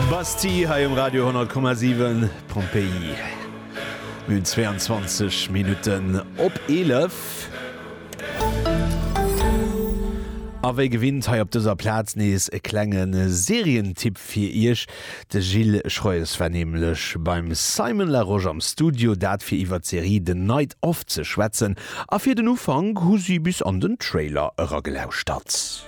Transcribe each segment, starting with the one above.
Bastille hei um Radio 10,7 Pompéi Min 22 Minutten op 11. A wéi gewinnt hei op dëser Plaz nees e klenge Serientipp fir Iech. De Gilles Schroes war nämlech beim Simon Larosche am Studio, dat fir iwwer d'Serie The Night Of ze schwätzen. A fir den Ufank hu si bis an den Trailer eragelauschert.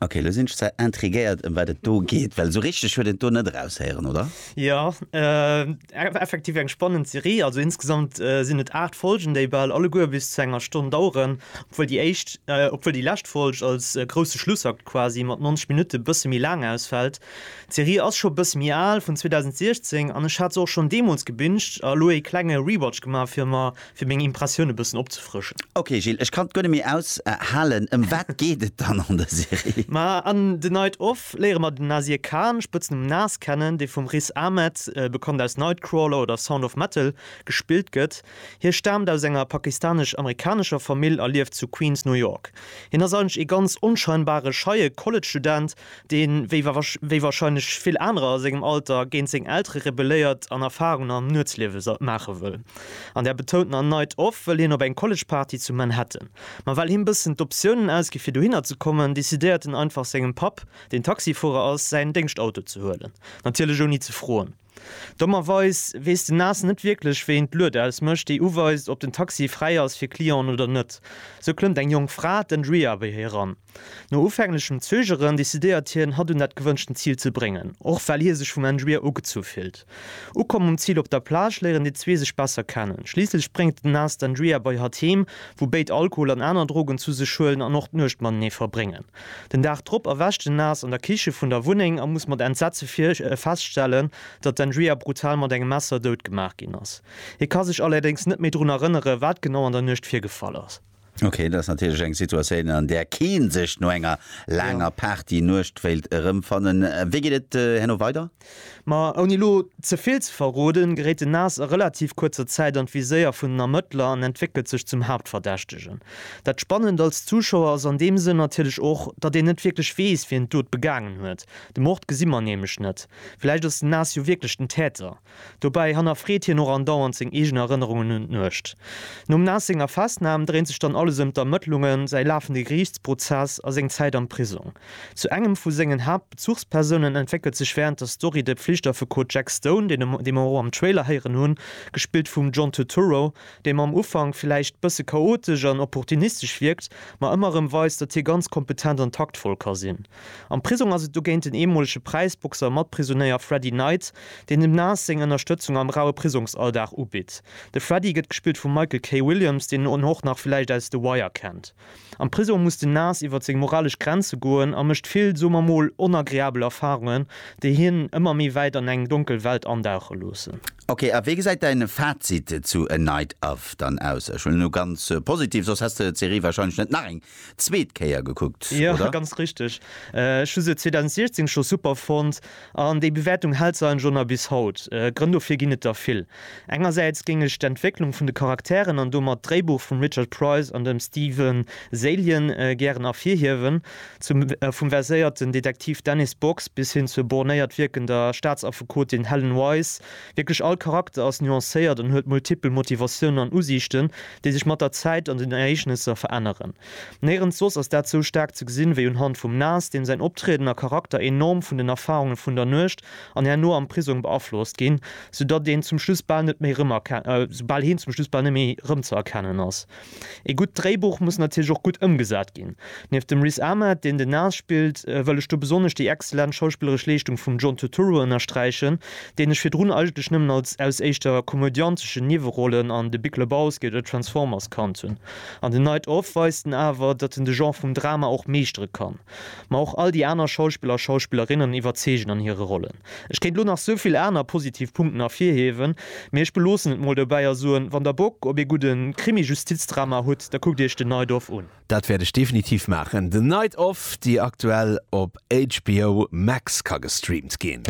Ok, elo sinn ech zwar intriguéiert ëm wat et do geet, well esou richteg huet een d'Do net eraushéieren, oder? Jo, effektiv eng spannend Serie. Also insgesamt sinn et 8 Folgen, déi bal alleguer bis zu enger Stonn daueren, obwuel déi éischt, obwuel déi lescht Folg als grousse Schlussakt quasi mat 90 Minutte bësse méi laang ausfält. D'Serie ass scho e bësse méi al, vun 2016, an ech hat se och schonn deemools gebinged a elo ee klenge Rewatch gemaach fir mer fir meng Impressioun e bëssen opzefrëschen. Ok Gilles, ech kann et guer net méi aus halen. Ëm wat geet et dann an der Serie? Ma an The Night Of léiere mer den Nasir Khan, Spëtznumm Nas, kennen, dee vum Riz Ahmed, bekannt aus Nightcrawler oder Sound of Metal, gespillt gëtt. Hie staamt aus enger pakistanesch-amerikanescher Famill a lieft zu Queens, New York. Hien ass eigentlech ee ganz onscheinbare, scheie College-Student, deen, wéi warscheinlech vill anerer a sengem Alter, géint seng Eltere rebelléiert an Erfarungen am Nuetsliewe maache wëll. An der betountener Night Off wëll hien op eng College-Party zu Manhattan. Ma well him bëssen d'Optiounen ausgi fir dohinner ze kommen, decidéiert en einfach sengem Papp, deen Taxifuerer ass, säin Déngschtauto ze huelen. Natierlech ouni ze froen. Dommerweis weess den Nas net wierklech, wéi een d'Lued ausmécht, déi uweist, ob den Taxi fräi ass fir Clienten oder net. Sou klëmmt eng jonk Fra, d'Andrea, bei hie eran. No ufänglechem Zögeren decidéiert hien, hatt un dat gewënschten Zil ze bréngen, och well hie sech vum Engibier ugezu fillt. Ukomm um Zil op der Plage léieren déi zwee sech besser kennen. Schliisslech bréngt den Nas d'Engibier bei hatt heem, wou béid Alkohol an aner Drogen zu sech huelen an och d'Nuecht matenee verbréngen. Den Dag drop erwächt den Nas an der Kiche vun der Wunneng a muss mat Entsetze feststellen, datt d'Engibier brutal mat engem Messer dout gemaach ginn ass. Hie ka sech allerdéngs net méi drun erënneren, wat genau an der Nuecht virgefall ass. Okay, dat ass natierlech eng Situatioun, an där kee sech no enger laanger ja. Party-Nuecht wéilt erëmfannen. Wéi geet et äh, herno weider? Ma ouni lo ze vill ze verroden, geréit den Nas a relativ kuerzer Zäit an d'Viséier vun den Ermëttler an entwéckelt sech zum Haaptverdächtegen. Dat Spannend als Zuschauer ass an deem Sënn natierlech och, datt een net wierklech weess, wien d'Dot begaangen huet. De Mord gesi mer nämlech net. Vläicht ass den Nas jo wierklech den Täter. Dobäi hannerfreet hien och andauernd seng eegen Erënnerungen un d'Nuecht. Nom Nas senger Festnam dréint sech dann alles ëm d'Ermëttlungen, säi lafende Geriichtsprozess a seng Zäit am Prisong. Zu engem vu sengen Haaptbezuchspersounen entwéckelt sech wärend der Story de Pflichtaffekot Jack Stone, dee mer och am Trailer héieren hunn, gespillt vum John Turturro, dee mam Ufank villäicht bësse chaotesch an opportunistesch wierkt, ma ëmmer erëm weist, datt hie ganz kompetent an taktvoll ka sinn. Am Prisong ass et dogéint den eemolege Präisboxer a Matprisonéier Freddy Knight, deen dem Nas seng Ënnerstëtzung am raue Prisongsalldag ubitt. De Freddy gëtt gespillt vum Michael K. Williams, deen en och nach villäicht aus The Wire kennt. Am Prisong muss den Nas iwwer seng moralesch Grenze goen a mécht vill, soe mer mol, onagreabel Erfarungen, déi hien ëmmer méi wäit an eng donkel Welt andauche loossen. Ok, a wéi gesäit däin Fazit zu A Night Of dann aus? Ech huelen elo ganz positiv, soss häss de d'Serie wahrscheinlech net nach eng zweet Kéier gekuckt, oder? Jo, ganz richteg. Ech hu se 2016 scho super fonnt an déi Bewäertung hält se eigentlech och nach bis haut. Grënn dofir ginn et der vill. Engersäits géing ech d'Entwécklung vun de Charakteren an domat d'Dréibuch vum Richard Price an dem Stephen Zaillian gären ervirhiewen, zum vum verséierten Detektiv Dennis Box bis hin zur bornéiert wierkender Staatsaffekotin Helen Wise, Wierklech all Charakter ass nuancéiert an huet multipel Motivatiounen an Usiichten, déi sech mat der Zäit an den Ereegnesser veränneren. Néirens soss ass dat sou staark ze gesinn, wéi un Hand vum Nas, deem säin Optrieden a Charakter enorm vun den Erfarunge vun der Nuecht an herno am Prisong beaflosst ginn, soudatt een zum Schluss bal net méi, soubaal heen zum Schluss bal net méi rëmzëerkennen ass. Ee gutt Dréibuch muss natierlech och gutt ëmgesat ginn. Nieft dem Riz Ahmed, deen den Nas spillt, wëll ech do besonnesch déi exzellent schauspilleresch Leeschtung vum John Turturro ënnersträichen, deen ech virdrun eigentlech nëmmen als aus éischter komödianteschen Niewerollen an The Big Lebowski oder Transformers kannt hunn. An The Night Of weist en awer, datt en de Genre vum Drama och meeschtere kann. Ma och all déi aner Schauspiller a Schauspillerinnen iwwerzeegen an hire Rollen. Ech kéint lo nach souvill aner positiv Punkten ervirhiewen, mee ech beloossen et mol dobäi a soen, wann der Bock op ee gudde Krimi-Justizdrama hutt, da kuckt iech den Night Of un. Dat wäert ech definitiv maachen. The Night Of, déi aktuell op HBO Max ka gestreamt ginn.